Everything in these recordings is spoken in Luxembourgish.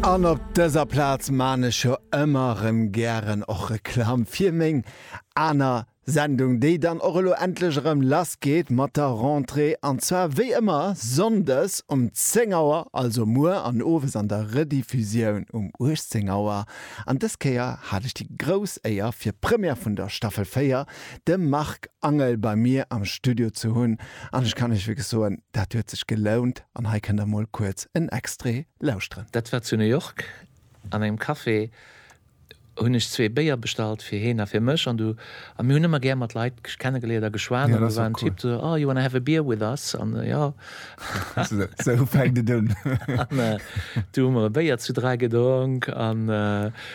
An op dëser Plaz maan ech jo ëmmer rem gären och Reklam fir meng aner Sendung, déi dann och elo endlech erëm lass geet mat der Rentrée, an zwar wéi ëmmer Sonndes um 10 Auer, also muer, an Owes an der Rediffusioun um 18 Auer. An dës Kéier hat ech déi grouss Éier fir Première vun der Staffel 4 de Marc Angel bei mir am Studio ze hunn an ech kann Iech wierklech soen, dat huet sech gelount an hei kënnt der mol kuerz en Extrait lauschteren. Dat war zu New York an engem Café, hunn ech zwee Béier bestallt fir heen a fir mech an du, a mir hunn ëmmer gär mat Leit kennegeléiert a geschwat an do war en Typ do, Oh, you wanna have a beer with us? An jo. Sou fänkt et un. An du hu mer e Béier zu dräi gedronk an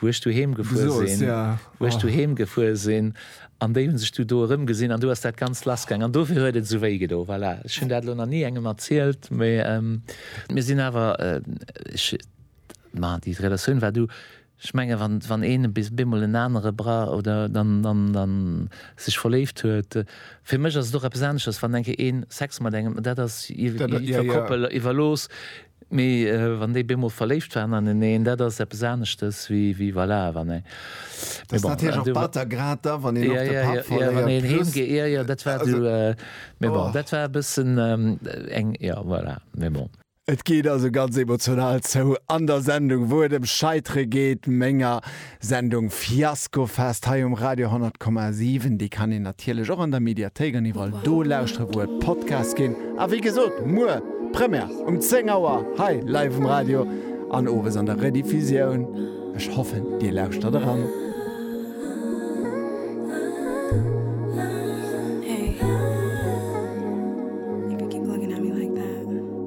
wou ech doheem gefuer sinn, wou ech doheem gefuer sinn, an déi hunn sech du do erëmgesinn an du ass dat Ganzt lassgaang an dofir huet et esou wéi gedo. Voilà, ech hunn dat elo nach ni engem erzielt, mee mir sinn awer, ech, ma déi Relatioun war du, ech menge wann een bemol en anere bra oder dann, dann, dann sech verléift huet, fir mech ass et och eppes aneschters, wann enke een Sex mat engem, dat ass iwwer Koppel iwwerlooss. Mee wann déi beemol verléift waren aneneen, dat ass eppes aneschtes wéi voilà, wann ee. Dat ass natierlech och batter, grad da wann een och de Papp verléiert. Wann een heem geet, jo, jo, dat war du. Mee bon, dat war e bëssen eng, jo, voilà, mee bon. Et geet also ganz emotional zou an der Sendung, wou et ëm Scheitere geet, menger. Sendung Fiaskofest hei um Radio 100,7. Déi kann een natierlech och an der Mediathéik an iwwerall do lauschtere wou et Podcasts ginn. A wéi gesot, muer Première um 10 Auer hei live um Radio an owes an der Rediffusioun. Ech hoffen dir lauschtert eran.